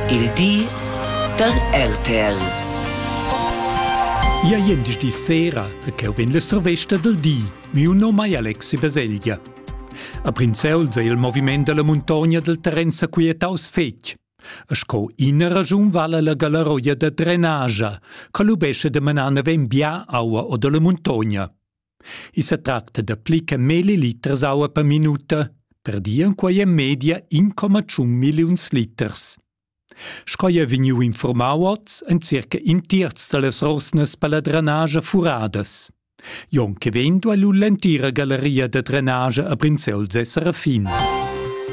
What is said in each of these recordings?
Il di da RTL. Ia jendischdi sera e cheu vegn la survesta del di. Miu nom ei Alexi Baselgia. A Prinzeuls ei il moviment dalla muntogna del terren sequietaus fetg. E sco ina ragiun vala la galaroia da drenagia, che lubesce de menar naven bia aua o dalla muntogna. I sa tracta da pli che milli liters aua per minuta, per dir en quai en media 1,1 milliuns liters. Sco è vegniu informau oz, ein circa in terz dallas rosnas per la drenage furadas. Jon che vegn duai lu l'entira galleria da drenage a Brinzels e Serafin.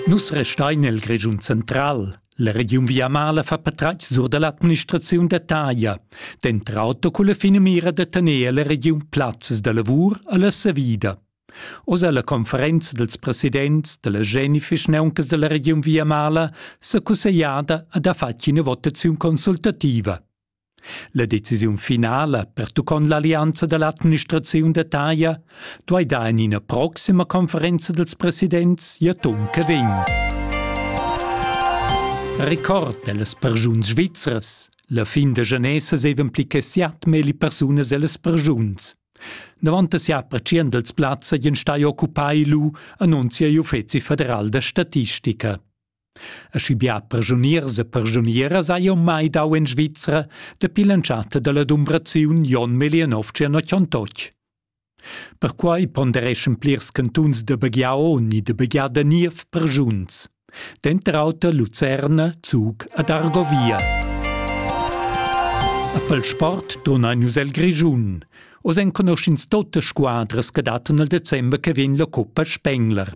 Nus restein el Grischun central. La regiun Viamala fa patratg sur da l'administraziun da taglia, dentr auto culla finamira da tener la regiun plazzas da lavur a la savida. Oz alla conferenza dels presidents della Geni Fischneuncas della regiun Viamala s'è cussegliada ad ha fatg ina votaziun consultativa. La decisiun finala pertuccont l'allianza dall'administraziun da taglia duei dar en ina proxima conferenza dels presidents gl'atun che vegn. Record dellas persuns svizras. La fin da genesa sevan pli che siat meli persunas ellas persuns. Davant sia aprecian dels plazza gien stai occupai lu annunzia l'Uffeci federal da statistica. Aschi bia persuniers e persunieras hai jeu mai dau en Svizra dapi l'entschatta dalla dumbraziun Jon Melionov Tschernotg. Perquai pondereschan plirs cantuns da Baghiao ni da Baghia niev persuns, denter auter Lucerna, Zug ed Argovia. A pel sport turnein nus el Grischun. Oz enconuschins tote squadras che dattan il december che vegn la cuppa Spengler.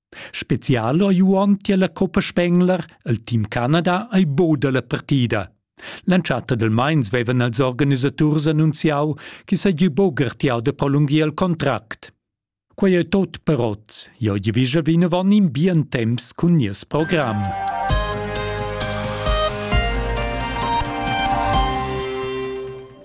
Spezial ha Juon tier la Coppa Spengler el team Canada ei bod dalla partida. L'entschatta del Mainz vevan els organisaturs annunziau che seigi bogertiau de prolungir il contract. Quei ei tot per oz. Jo divigia vinavon in bien temps cun nies program.